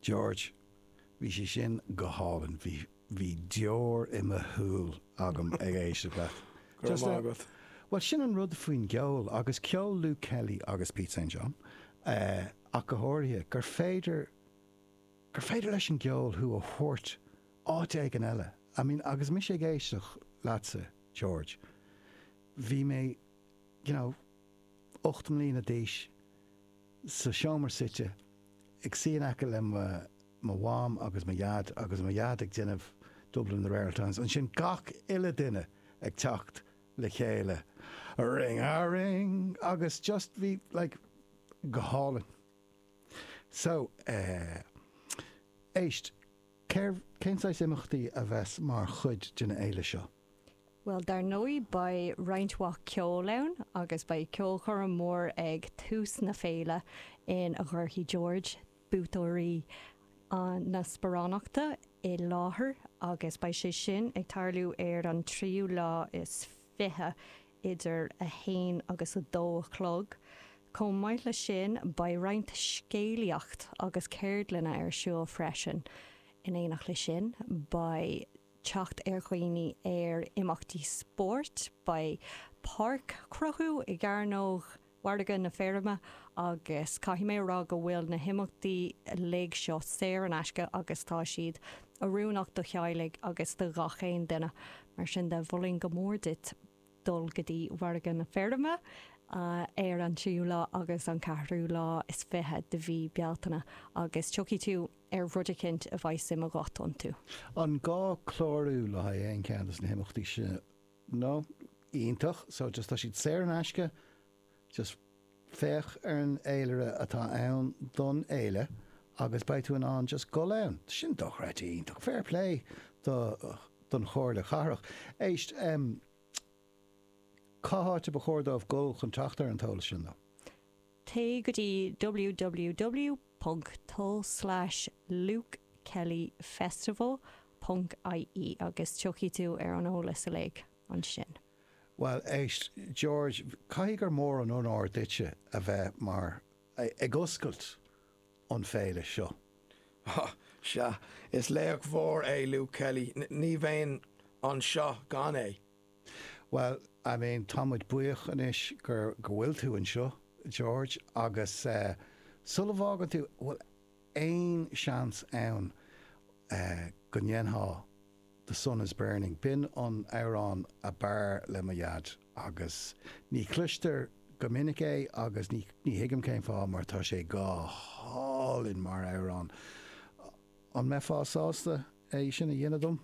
George, Bhí sé sin go hálainn, bhí, bhí deor i mo shúil agam ag éisteacht leat. Go raibh maith agat. Bhuel, sin an rud faoin gceol, agus ceol Luke Kelly agus Pete St John ach go háirithe, gur féidir, gur féidir leis an gceol thú a thabhairt áit éigin eile. I mean, agus mise ag éisteacht leatsa, George, bhí mé, you know, ocht mbliana d'aois, sa seomra suite, ag suí in aice le mo Mham agus mo Dhaid, agus mo Dhaid ag déanamh Dublin in the Rare Auld Times. Ansin gach uile duine ag teacht le chéile, ring a ring! Agus just, bhí, like, go hálainn. So, eh, éist, céard, cén saghas imeachtaí a bheas mar chuid den fhéile seo? Bhuel, dar ndóigh beidh roinnt mhaith ceoil ann agus beidh ceolchoirm mhór ag tús na féile in a gcuirfidh George buaiteoirí na sparánachta i láthair agus beidh sé sin ag tarlú ar an tríú lá is fiche idir a haon agus a dó a chlog. Chomh maith le sin beidh roinnt scéalaíocht agus ceardlanna ar siúl freisin. In éineacht le sin beidh. teacht ar dhaoine ar imeachtaí spóirt, beidh páirc-chruthú i gCearnóg Mhargadh na Feirme agus caithfidh mé a rá go bhfuil na himeachtaí uilig seo saor in aisce agus tá siad oiriúnach do theaghlaigh agus do ghach aon duine, mar sin de, mholfainn go mór duit. dul go dtí Mhargadh na Feirme ar an tríú lá agus an ceathrú lá is fiche de mhí Bealtaine agus tiocfaidh tú ar rud eicínt a bheidh suim agat iontu. An gá clárú le haghaidh aon cheann de na himeachtaí seo? No? Iontach. So just tá siad saor in aisce? Just féach ar an fhéilire atá ann don fhéile agus beidh tú in ann just gul ann. Sin dochreidte iontach. Fair play do don Chomhairle Chathrach. Éist, em, cá háit a ba chóir dóibh gul chun teacht ar an t-eolas sin, though? Téigh go dtí ww ponc lukekellyfestival ponc ie agus tiocfaidh tú ar an eolas uilig ansin. Bhuel, éist, George, caithfidh gur mór an onóir duitse a bheith mar. ag oscailt an Féile seo. Há! Sea, is laoch mór é Luke Kelly, ní bheinn anseo gan é. Bhuel, I mean, tá muid buíoch anois gur, go bhfuil tú anseo, George, agus eh, sula bhfágann tú, bhfuil aon seans ann eh, go ndéanfá. The Sun is Burning. B'in an amhrán a b'fhearr le mo dhaid agus ní chloistear go minic é agus ní thuigim cén fáth mar tá sé go hálainn mar amhrán. An mbeifeá sásta é sin a dhéanamh dom?